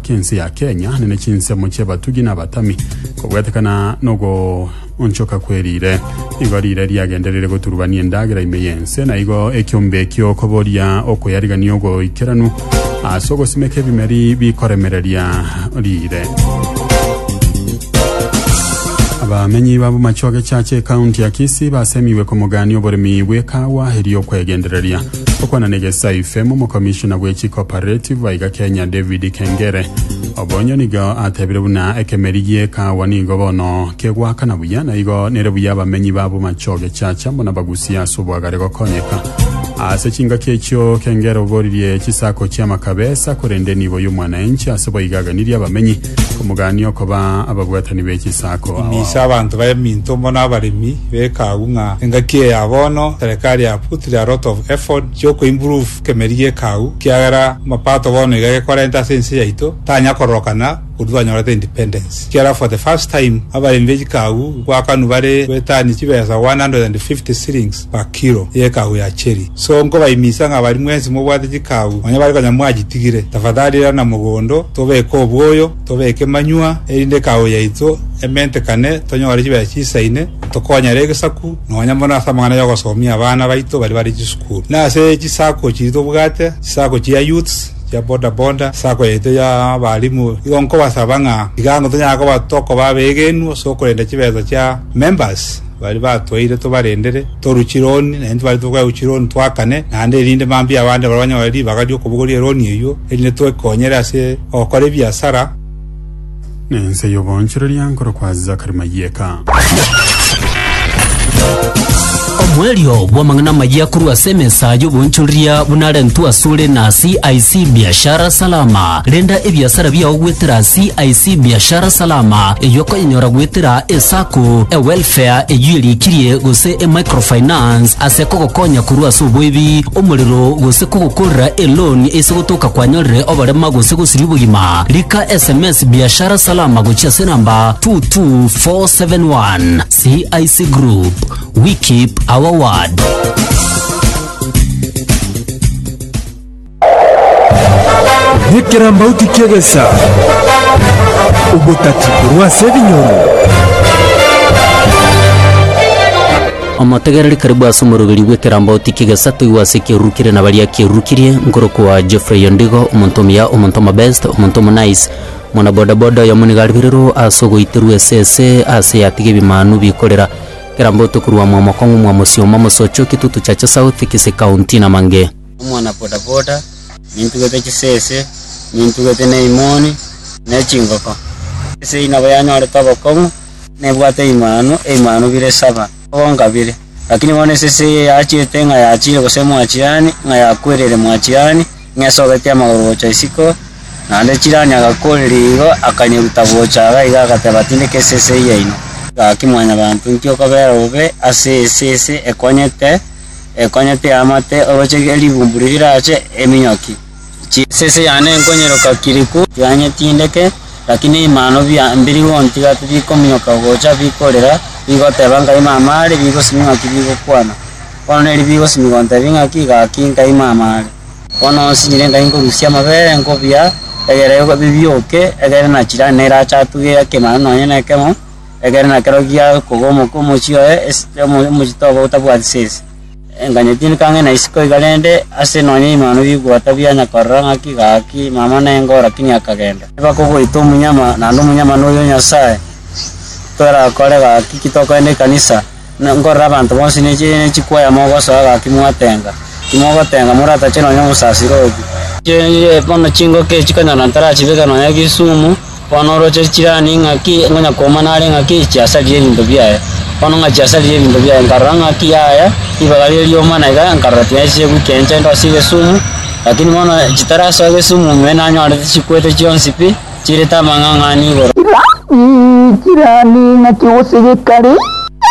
Chinse ya Kenya nene chinsemo chi'abatugi na abatami kobwetekana nogoonchoka kwe riire. Igo riire riagenderire goturubania endagera ime y'ense, na igo ekiombe ekio koboria okoyarigania ogoikeranu ase ogosimeka ebimeri bikoremereria riire. Abamenyi ba Bomachoge Church ecounty ya Kisii basemigwe komogania oboremi bw'ekawa erio okwegendereria. Gokwana negesae Ifem, omokomishona bwe chi cooperative aiga Kenya David Kengere obonyo nigo atebire buna ekemeri gie kaawa nigo bono kegoakana buya na igo nere buya abamenyi ba bomachoge chacha muna bagusie ase obwagare gokonyeka ase chingaki echio Kengere oboririe chisako chia makabesa korende nibo y'omwanaenchi ase boigaganirie abamenyi Komogania okoba abagwetani be chisaku ao. Ime ase abanto b'eminto muna abaremi beka agwo ng'a engaki eye ya bono serikali ya put the a lot of effort cia oko improve kemeri geka agwo ekiagera mapato bono iga gekorenta ase ense yaito tanya kororokana koru twanyorete independence ekiagera for the first time abaremi be chikagu gwakanwa bare goetania chibesa 150 shillings bakiro y'ekaau ya cheri. So nkobaimisa ng'a baria mwensi mobwate chikaau nonya bare konya mwachitigire, tafadhali irana mogondo, tobeke oboyo, tobeke manywa, erinde ekaau yaito ementekane, tonyore chibesa chiisaine, tokonyere egesaku, nonya mono ase amang'ana y'ogosomia abana baito baria bare chisukuru. Na ase chisako chiria tobwate, chisako chia youths, chia boda boda, sako yaito ya abalimu, igo nkobasaba ng'a iga ang'o tonyara koba tokoba abeegenu ase okorenda chibesa chia members. Baria batwaire tobarendere, torue Chironi, na intwe baria togocha korwa Chironi twakane naende, erinde mambia abande barabwo banyore ribaga ri'okobogoria eroni eyio, erinde twekonyere ase ogokora ebiasara. Nense y'oboonchoreria nkorokwa Zachary Mayieka. Omoerio bw'amang'ana amaya korwa ase emesa y'oboonchoreria buna arentwe asore na CIC Biashara Salama. Renda ebiasara biao goetera CIC Biashara Salama, eyio okonyenyora goetera eSacco, eWelfare eyio erikirie, gose eMicrofinance ase kogokonya korwa ase oboebi, omorero, gose kogokorera eloan ase gotoka kwanyorire oborema gose gosiria obogima. Rika sms Biashara Salama gochia ase enamba 22471. CIC Group, we keep our word. Nekerambauti ki'egesa, obotati korwa ase ebinyoro. Omotegereri karibu ase omoroberio bw'ekerambauti ki'egesa toigwe ase ekeruru kere na baria akerurukirie, nkorokwa Geoffrey Ondigo, omonto omuya, omonto omobest, omonto omonice, mwana boda boda oyomo nigo ariberirwe ase ogoiterwa esese ase eyatiga ebimanu bikorera. Kerambauti korwa mwamokong'u mwa Mosioma, Mosocho, Kitutu, Chache South, Kisii County, na Mange. omwana-bodaboda, nintugete chisese, nintugete neimoni, ne chingoko. Ase eyio nabo yanyorete obokong'u, na ebwate eimanu, eimanu bire saba, obokongu kabere. Lakini bono esese eye yachiete ng'a yachiire gose mwachirani, ng'a yakwereire mwachirani, ng'a esobetie amagoro gocha isiko, naende chirani agakoreria igo, akanyeruta gocha iga iga agateba, Tindeka esese yaino. Gaki Mwanyabaanto, inki okobera obe ase esese ekonyete? ekonye pi amate oroche erigumbu riria rirache eminyoki. Chi. Esese yane nkonyeroka kiriku. Yanye tindeke, lakini ebimano bia mbiri gontiga tibikominyoka gocha bikorera, bigoteba nkai mama are, bigosimi ng'aki bigokwana. Bono neri bigosimi gontebi ng'aki gaki nkai mama are. Bono nsinyire nkai nkorusia amabere nkobia egere bibioke, egere nachira nerache atuge ekemano nonye nekemo. Ekero nakero giakoga omoka omochie oye, esike omo- omochie toba otabwati sese. Enganya tindi kang'ina isiko iga rende, ase nonya imano bigwota bianyakorora ng'aki gaki mama nengo, rakini akagenda. Bakogoita omunyama, naende omonyama noyo Nyasae torakore gaki ki tokorende ekanisa. Nkorora abanto bonsi ne chikwaya mogosoa gaki mwatenga, timogotenga moratache nonya omosasiro obi. Bono chingoka echi konya notarachibeke nonya Kisumu, bono oroche chirani ng'aki ngonya komana are ng'aki chiasarire ebinto biaye. Bono ng'a chiasarire ebinto biaye nkarora ng'aki yaya ribaga riria rioma na iga nkarora tiga nchiche goika enchente ase Kisumu, lakini bono chitarasoa Kisumu me nanyorete chikwete chionsi pi. Chirete amang'ang'ani igoro. Iga iikire ande ing'aki gose gekari,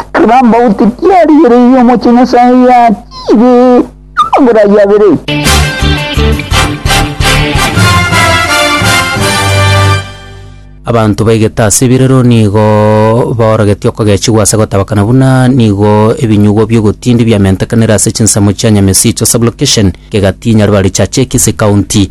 ekero ambaguti tiarigereirie omochie Nyasae yatiire amagoro ayio abere. Abanto baigete ase ebirero nigo baorogetie okogechigwa ase gotabakana buna nigo ebinyugwa bi'ogotindi biamentekanire ase chinsemo chia Nyamesicho Sub-location, Kegati, Nyaribari Chache, Kisii County.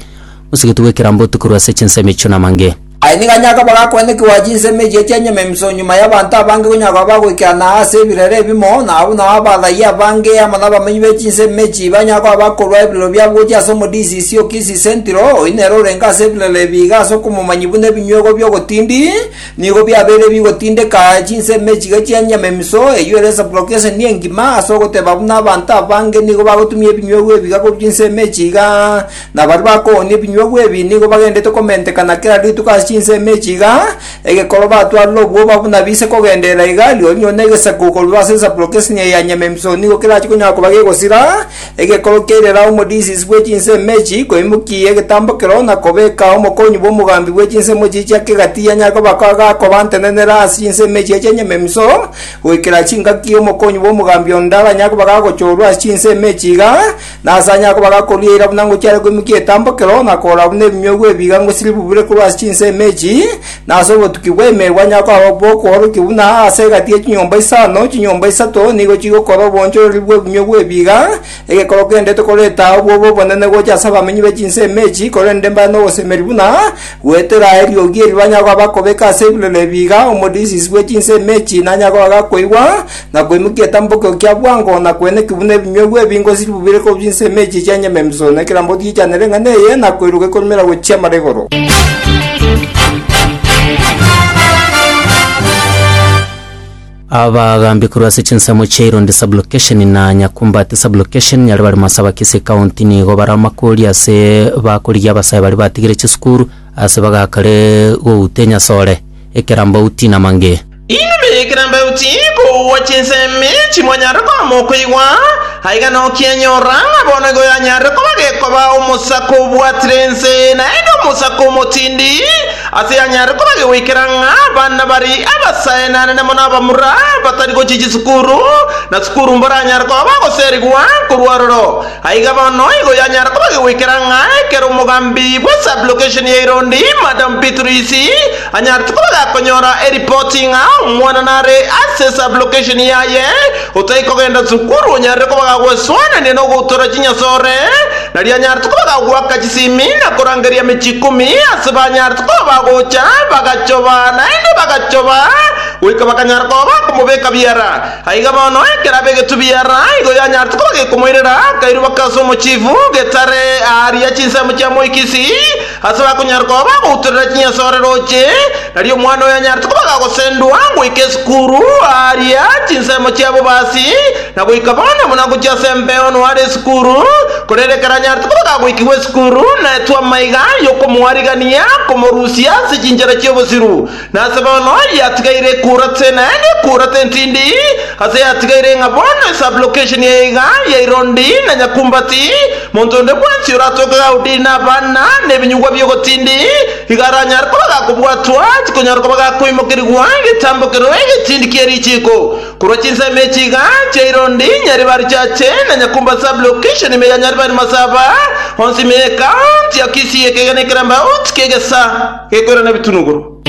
Gose getugwe ekerambe otikorwe ase chinsemo echio namange. Aye nigo anyare koba gakoenda ekegoa chinsemo echio chia nyamemiso nyuma y'abanto abange konya koba bagoikerana ase ebirero ebimo, na abwo nao abathayia abange amo nabamenyi be chinsemo echio banyare koba bakorua ebirero biabo gochia ase omodisiisi o Kisisentiro, oyio nere orenge ase ebirero ebi iga ase okomomanyi buna ebinyuegwa bi'ogotindi nigo biabeire bigotindeka chinsemo echi iga chia nyamemiso, eyio ere esabulokeseni engima ase ogoteba buna abanto abange nigo bagotumia ebinyuegwa ebi iga korwa chinsemo echi iga. Na baria bakoonia ebinyuogwa ebi nigo bagenderete komentekana kera rituko ase chinsemo echi iga, egekoro batwarire obwoba buna bise kogenderera iga, rirorio rinyore na egesaku korwa ase esapuro k'esinyayo ya Nyamemso nigo kerache konyara koba gegosira egekoro kia irera omorisiisi bwe chinsemo echi koimokia egetambo keroo na kobeka omokonyi bw'omogambi bwe chinsemo echi chia kegati anyare koba gakobantenenera ase chinsemo echi chia Nyamemso goikera chingaki omokonyi bw'omogambi onde aranyare koba gagochorwa ase chinsemo echi iga Nase onye akoba gakoru eira buna ngochiare koimokia etambokero, na korora buna ebinyogwa ebiiga ngosiri bibure korwa ase chinsemo echi, na ase obotuki bw'emeeri bwanyare koba bw'okworokia buna aase egati ye chinyomba isano, chinyomba isato nigo chigokora obonchoreri bw'ebinyogwa ebiiga, egekoro kende tokoreta ao bobe obonene gocha ase abamenyi be chinsemo echi, korende mbare nogosemeria buna goetera eriogi eri banyare koba bakobeka ase ebirori ebiiga, omodisiisi bwe chinsemo echi nanyare koba gakoigwa, na koimokia etambokero kia bwango, na kwenekigwa buna ebinyuegwa ebingo siribu bire korwa chinsemo echi chia nyama emisoro, na ekero mboti echanera eng'ana eye, na koiroka ekorumera gochia amara igoro. Abagaambi korwa ase chinsemo chia Irondi sub-location na Nyakumbati sub-location nyare bare Masaba Kisii County nigo bare amakori ase bakorigia abasae baria batigire chisukuru ase bagakare gouta enyasore, ekerambauti na mang'e. Inwe ekerambauti kogwa chinsemi chimonyare koama okoigwa, aiga nokianyora, ng'a bono igo yanyarire koba gekoba omosaka obwatire ense, naende omosaka omotindi, ase yanyarire koba gegoikera ng'a abana bari abasaenane na mono abamura batari gochia chisukuru, na sukuru mboranyare koba bagoserigwa korwa aroro. Aiga bono igo yanyara koba gegoikera ng'a ekero omogambi bwe sub-location ya Irondi, Madam Beatrice, anyarete koba gakonyora eripoti ng'a omwana nare ase sub-location yaye otari kogenda sukuru onyarire koba gagweswanania nogoutora chinyasore, nari anyarete koba gagoaka chisimi na korangeria emechie ikomi ase banyarete koba bagocha bagachoba naende bagachoba goika bakanyara koba bakomobeka biara. Aiga bono ekeraba egetubi ara igo yanyaretwe koba gekomoirera akairwa baka ase omochifu getare aaria chinsemo chia moikisi ase bakonyara koba bagoutorera chinyasore roche, nario omwana oyo yanyaretwe koba gagosendwa goika esukuru aaria chinsemo chia bobasi, na goika bono buna gochia ase embeo noare esukuru, korende ekero anyaretwe koba gagoikigwa esukuru naetwe amaiga yokomoarigania komorusia ase chinchera chi'obosiru. Nase bono yatigaire ekurate, naende ekurate entindi, ase yatigaire ng'a bono esublocation eye iga ya Irondi na Nyakumbati, monto onde bwensi oratoke gaudiri na abana na ebinyugwa bi'ogotindi, iga aranyare koba gakobwatwa, tikonyara koba gakoimokerigwa egetambokero egetindi kie richiiko, korwa chinsemo echi iga chia Irondi, Nyaribari Church, na Nyakumbati Sublocation ime ya Nyaribari Masaba, onsi ime ye County ya Kisii, ekegena ekeramba, outi kegesa. Gekore nebitunuguru.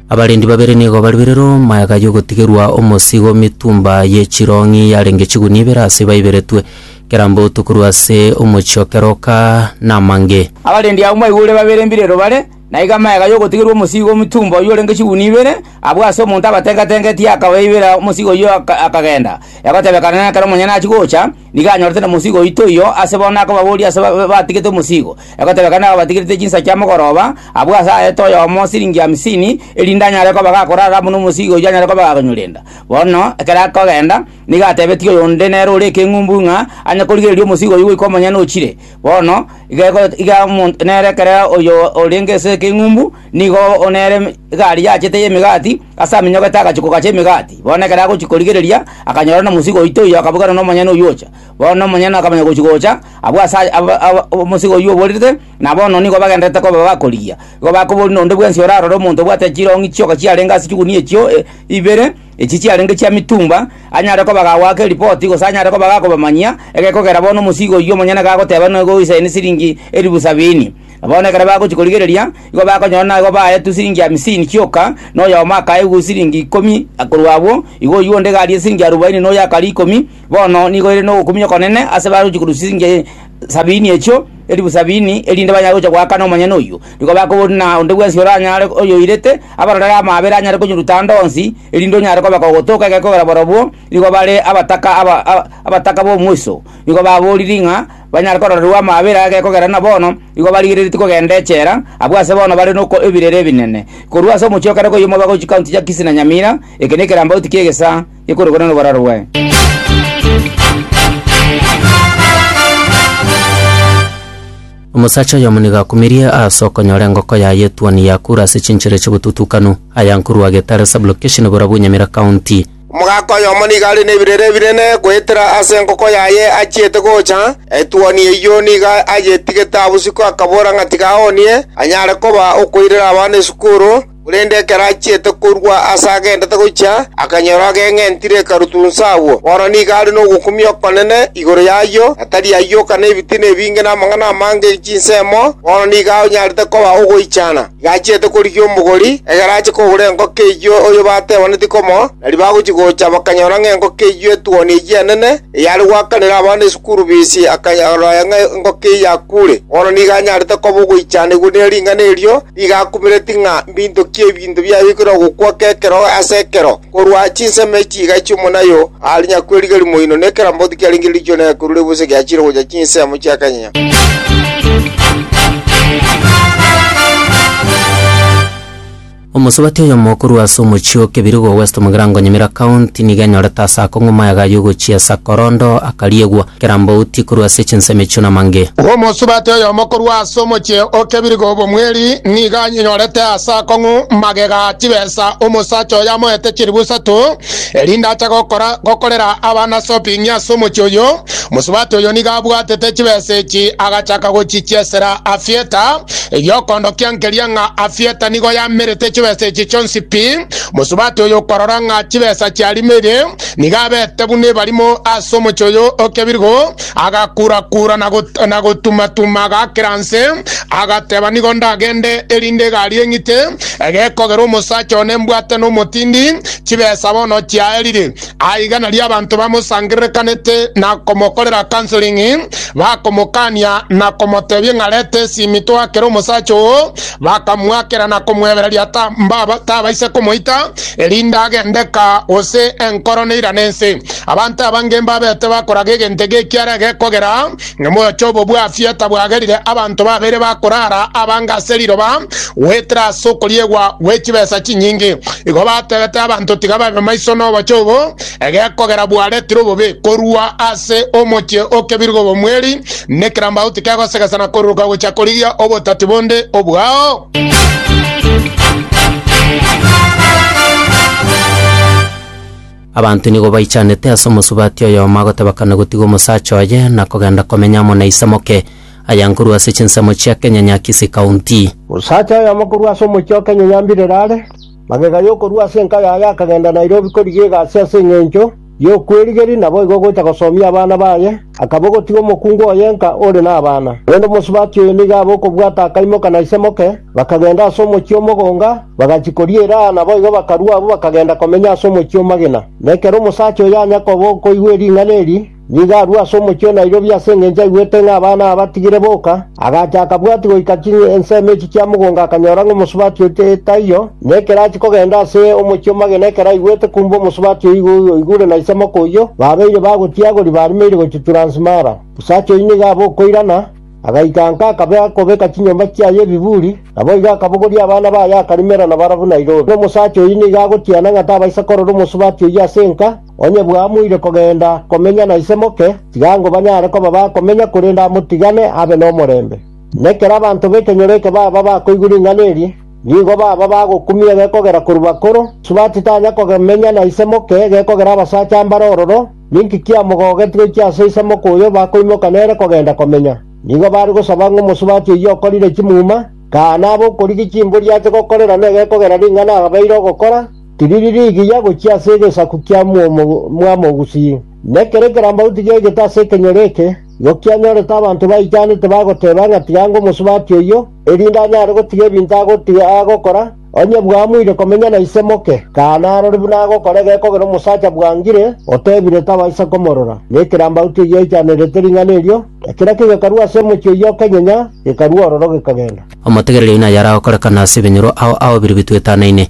Abarendi babere nigo bariberere omoegayo ogotigerwa omosigo mitumba ye chirong'i yarenge chigunia ibere ase baiberetwe kera mboto korwa ase omochie o keroka na amange. Abarendi abwo mbaigure babere mbirero bare, na igo amaega y'ogotigerwa omosigo mitumba oyio orenge chigunia ibere, abwo ase omonto abatenga-tengetie akabaibera omosigo oyio akagenda, egotebekana nekero omonyene achia gocha, Nigo anyorete nomosiigo oito oyio ase bono akobaboria ase batigete omosiigo. Egoteba ekero nababatigerete chinsa chia mogoroba, abwo ase aete oyomo siringi hamsini, erinde anyare koba gakorara amo nomosiigo oyio anyare koba gakonyorenda. Bono ekero akogenda, nigo atebetie oyonde nere ore ekeng'umbu ng'a anye korigereria omosiigo oyio goika omonyene ochire. Bono iga ego iga omonto nere ekero oyo orenge ase ekeng'umbu nigo nere egari yachete y'emegati, Ase amenyogo etae agachia kogacha emegati. Bono ekero agochia korigereria, akanyora nomosike oito oyio, akabuganera nomonyene oyio ocha. Bono nomonyene akamanya gochia gocha, abwo ase aya- aba- aba- omosike oyio oborerete, na bono nigo bagendererete koba bakorigia. Igo bakoboria nonde bwensi orarore omonto obwate chirong'i chioka chiarenge ase chigunia echio e- ibere, echi chiarenge chia mitumba, anyare koba gagoaka eripoti, gose anyare koba gakobamanyia, egekogera bono omosike oyio omonyene gagoteba nigo oisayine siringi eribu sabini. Na bono ekero bagochia korigereria, igo bakonyora naigo baetwe siringi hamsini kioka, na oyomo akaegwa siringi ikomi korwa abwo, igo oyio onde garia siringi arubaini na oyo akaria ikomi. Bono nigo ere nogokumia okonene ase bagochia korwa siringi sabini echio, elifu sabini, erinde banyare gochia goakana omonyene oyio. Nigo bakoboria na onde bwensi oranyare oyoirete abarorere amaabera anyare konyeruta ande onsi, erinde onyare kobeka ogotoka egekogera borobwo, nigo bare abataka aba aba abataka b'omoiso. Nigo baboririe ng'a. banyare kororerwa amaabera ake kogera na bono, igo barigereretie kogenda echela, abwo ase bono bare noko ebirere ebinene. Korwa ase omochie o kare koyia omobe agochia county chia Kisii na Nyamira, eke nekerambauti ki'egesaa gekorokwana noboraro bwaye. Omosacha oyomo nigo akumirie ase okonyora engoko yaye etuoni ya kura ase chinchera chi'obotutukanu, ayankurwa Getare Sub-Location Burabwo Nyamira County. Omogaka oyomo nigo are nebirere binene goetera ase enkoko yaye achiete gocha, etuoni eyio nigo ayetigete abosiko akabora ng'a tiga aoonie, anyare koba okoirera abana esukuru, korende ekero achiete korua aase agendete gochia, akanyora ageng'entire ekarutunsa agwo. Bono nigo are nogokumia okonene igoro y'ayio, na tari ayioka nebitina ebinge namang'ana amange chinsemo, bono nigo anyarete koba ogoichana. Igachiete korigia omogori, ekero ache kogora engoko eyio oyo batebaneti komoa, na ribaga gochia gocha bakanyora ng'a engoko eyio etuoni eyio enene, eyare goakanera abana esukuru bisi, akanyaroria ng'a engoko eyio yakuure. Bono nigo anyarete koba ogoichanigwa ne ring'ana erio, nigo akumereti ng'a mbintokie ebinto biaye bikore ogokwa kw'ekero ase ekero. Korwa chinsemo echi chiga echio monayo aare nyakweriga rimo inwe, ne kera mboti kiarenge riichoro na ekerure gose giachire gocha chinsemo chia kanyenya. Omosubati oyomo korwa ase omochie o Kebirogo West Mugirango Nyamira County nigo enyorete ase akong'u mayaga yogochia Sakorondo akariegwa. Kera mbouti korwa ase chinsemo echio namange. Omosubati oyomo korwa ase omochie o Kebirigo obomweri nigo anyenyorete ase akong'u magega a chibesa omosacha oyo amoete chilifu isato, erinde ache gokora gokorera abana soping'i ase omochie oyio. Omosubati oyio nigo abwatete chibesa echi agachaka gochichiesera Afieta. Egiokondokia nkeria ng'a Afieta nigo yamerete chibesa echi chionsi pi. Omosubati oyio okorora ng'a chibesa chiarimoire, Nigo abete buna ebarimo ase omochie oyo okebirgo, agakura-kura na got- na gotuma-tuma agakera nse, agateba, Nigo ndagende, erinde egari eng'ite, egekogera omosacha one mbwate nomotindi, chibesa bono chiaerire. Aiga nario abanto bamosangererekanete na komokorera counseling, bakomokania na komotebia ng'a reta esimi toakere omosacha oo, bakamoakera na komwebereria ta- mbaba- tabaisa komoita, erinde agende ka, gose enkoro neirane ense. Abanto abange mbabete bakoraga egento ege ekiara egekogera ng'a moyoche obobwafia tabwagerire abanto babere bakorara abange ase riroba goetera ase okoriegwa gwe chibesa chinyinge. Igo batebete abanto tiga babe maiso noboche obo, Egekogera bwaretire obobe korwa ase omochie o kebirogo obomweri, nekerambau tikegosegesa na koruruka gochia korigia obotati bonde obwao. Abanto nigo baichanete ase omosubati oyomo agoteba kane gotiga omosacha oye na kogenda komenya amo na ise moke, aya nkorwa ase chinsemo chia Kenyanyaakisi County. Osacha oyomo korwa ase omochie o Kenyanyaambirero are Magega y'okorua ase enka yaye akagenda Nairobi korigia egasi ase engencho y'okwerigeria naboigo gocha gosomia abana baye, akaba ogotiga omokungu oye enka ore nabana. Korende omosubati oyo nigo abe okobwata akaimoka na ise moke, bakagenda ase omochie omogonga, bagachia koriera aa naboigo bakarua abwo bakagenda komenya ase omochie omagena. Nekero omosacha oyo anya koba okoigwa ering'ana eri, Nigo arue ase omochie o Nairobi ase engencho aigwete ng'a abana aba batigire boka, agacha akabwati goika chinya ensemo echi chia mogongo akanyora ng'a omosubati oche taiyo, na ekero achia kogenda ase omochie omogeni ekero aigwete kumbe omosubati oyio igo oigure na isemoko oyio babeire bagotiagori barimeire gochia Transmara. Osacha oyio nigo abe okoirana, agaikanka akabe akobeka chinyomba chiaye ebiburi, naboigo akabogoria abana baye akarimera nabarabwo Nairobi. Omosacha oyio nigo agotiana ng'a tabaisa korora omosubati oyio ase enka, Onye bwamoire kogenda komenya na ise moke, tiga ngo banyare koba bakomenya, korende amotigane abe nomorembe. Nekero abanto b'ekenyoro eke baba bakoigwa ring'ana eri, nigo baba bagokumia gekogera korwa bakoro, Subati titanya komenya na ise moke gekogera abasacha mbare ororo, ninki kiamogogetie gochia ase ise moke oyo bakoimoka nere kogenda komenya? Nigo bare gosaba ng'a omosubati oyio okorire chimuma, kaa nabe okorigia chimbori ache gokorera negekogera ring'ana abeire ogokora, Tiriri rigiya gochia ase egesaku kia mwomo mwamogusii, na ekero ekerambagu tigegete ase ekenyoro eke, igo kianyorete abanto baichanete bagoteeba ng'a tiga ange omosubati oyio, erinde anyare gotiga ebinto agotiga agokora, onye bwamuire komenya na ise moke, kana arore buna agokora egekogera omosacha bwangire, otebire tabaisa komorora. Na ekerambagu tigiaichanerete ring'ana erio, na kera kegekarua ase omochie oyio okenyenya, gekarua ororo gekagenda. Omotegereria oino ayare agokorekana ase ebinyoro ao ao biria bituetanaine.